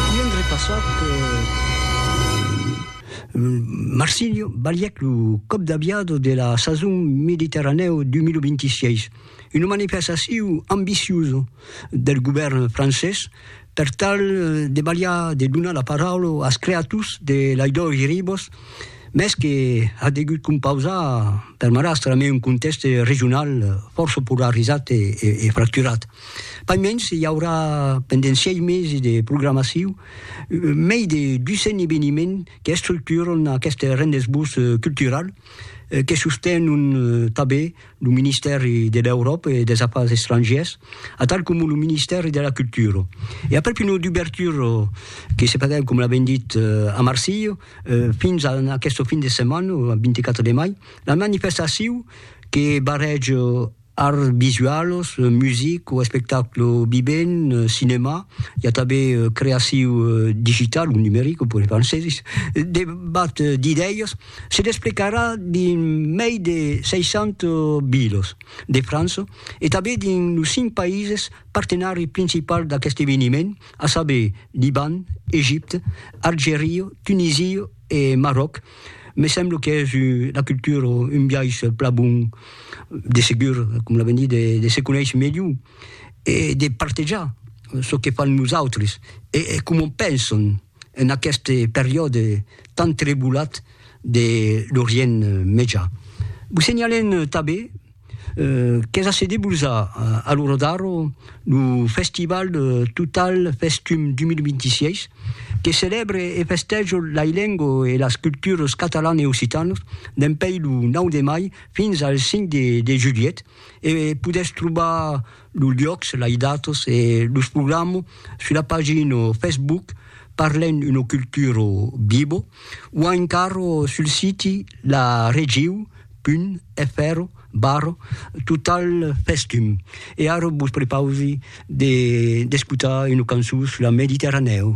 I un repassat per Marsilio balhèc lo còp d'aviado de la sason Mediterranèo 2026, una manifestacion ambiciosa del govèrn francés per tal de balhar de donar la paraula als creators de Las Dos Ribes, mès que a degut compausar per marrastre amé un contèxte regional fòrça polarizat e fracturat. Pas mens, i aurà pendent sièis mesi de programacion mei de 200 eveniments qu'estructuran aqueste rendez-vous cultural que sostenon tanben lo Ministèri de l'Euròpa e dels Afars Estrangièrs atal coma lo Ministèri de la Cultura. E aprèp una dubertura que se faguèt, coma l'avèm dit, a Marsilha, fins a aquesta fin de setmana, lo 24 de mai, la manifestacion que barrèja Arts visualos, music o espectaclo vivent, cinèma, i a tanben creaciu digital o numeric, pòdi far en sezis, debat d'idèias, se desplegarà dins mei de 600 vilas de França e tanben dins los cinc païses partenari principals d'aqueste eveniment, a saber, Liban, Egipte, Algeria, Tunisia E Marròc, me semblo qu'es una cultura un biais plan bon, de segur, com la venir de se conéisher melhor e de partejar çò que fan los autres e coma pensan en aquest periòde tan trebulat de l'Orient Mejan. Vos senhalem tanben. qu'es a se debulzar a lo Rodarro lo festival Total Festum 2026, que celèbre e festèja lai lengo e las cultures catalan e occitanas dempèi lo 9 de mai fins al 5 de julhet e podètz trobar los luòcs, lai datas e los programa sus la pagina Facebook Parlem una cultura viva o encara sul siti la Regiu. Pun, efèro, barro, total festum. E ara vos prepausi de d'escotar una cançon sus la Mediterranèu.